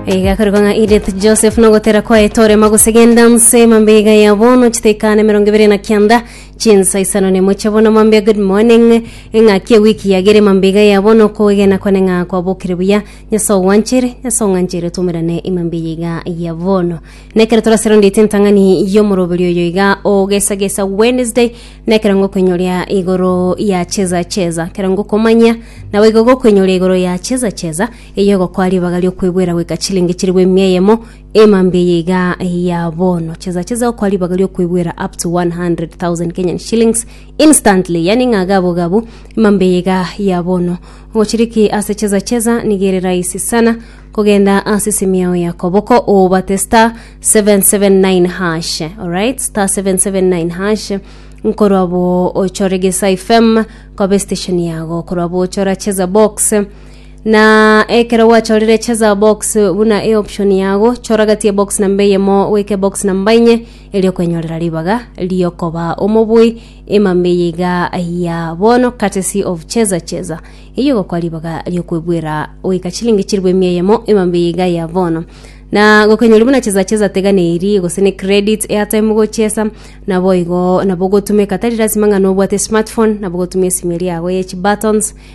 Iga korigwa ng'a Edith Joseph nogotera kwaye torema gose genda nse mambia iga ya bono chitekane mirongo ibere na kianda chinsa isano nemo chia bono mambia good morning eng'aki ewiki yagere mambia iga ya bono koegena kwane ng'a kwabokire buya nyasae ogwanchere nyasae ong'anchere tumerane imambia eye iga ya bono nekero torasero ndete entang'ani y'omoroberi oyo iga ogesagesa wednesday nekero ngokwenyoria igoro ya cheza cheza kero ngokomanya nawe igo gokwenyoria igoro ya cheza cheza Eyio egokoa ribaga ri'okwegwera goika chilingi chilifu emia eyemo, emambia eye iga ya bono. Chesa chesa egokoa ribaga ri'okwegwera up to 100,000 Kenyan shillings instantly, yaani ng'a gabo gabo, emambia eye iga ya bono. Ogochiriki ase chesa chesa nigo ere rahisi sana, kogenda ase esimi yao ya koboko obate star 779 hash, alright, star 779 hash nkorwa abo ochore gesa fm kobe station yago korwa abo ochora cheza box Na ekero gwachorire cheza box buna e option yago, chora gati ya box namba eyemo goika box namba inye erio okwenyorera ribaga riokoba omobui emambe eye iga ya bono courtesy of cheza cheza eyio gokwa ribaga riokwebwera goika chilingi chiribu emia eyemo emambe eye iga ya bono na gokenyori buna cheza cheza tega neri gose ne credit airtime gochesa nabo igo nabo gotumeka tari lasima ng'a nobwate smartphone nabo gotumia esimi eria yago ye chi buttons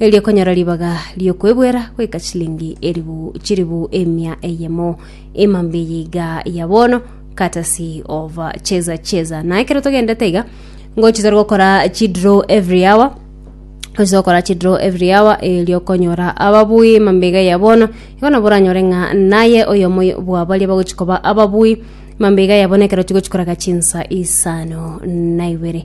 erio konyora ribaga ri'okwebwera goika chilingi eribu chiribu emia eyemo emambia eye iga ya bono courtesy of uh, cheza cheza na ekero togendete iga ngochi tore gokora chidraw every hour oise gokora chidraw every hour erio okonyora ababui emambia iga ya bono igo nabo oranyore ng'a naye oyomo bwa baria bagochi koba ababui emambia iga ya bono ekero chigochi koraga chinsa isano na ibere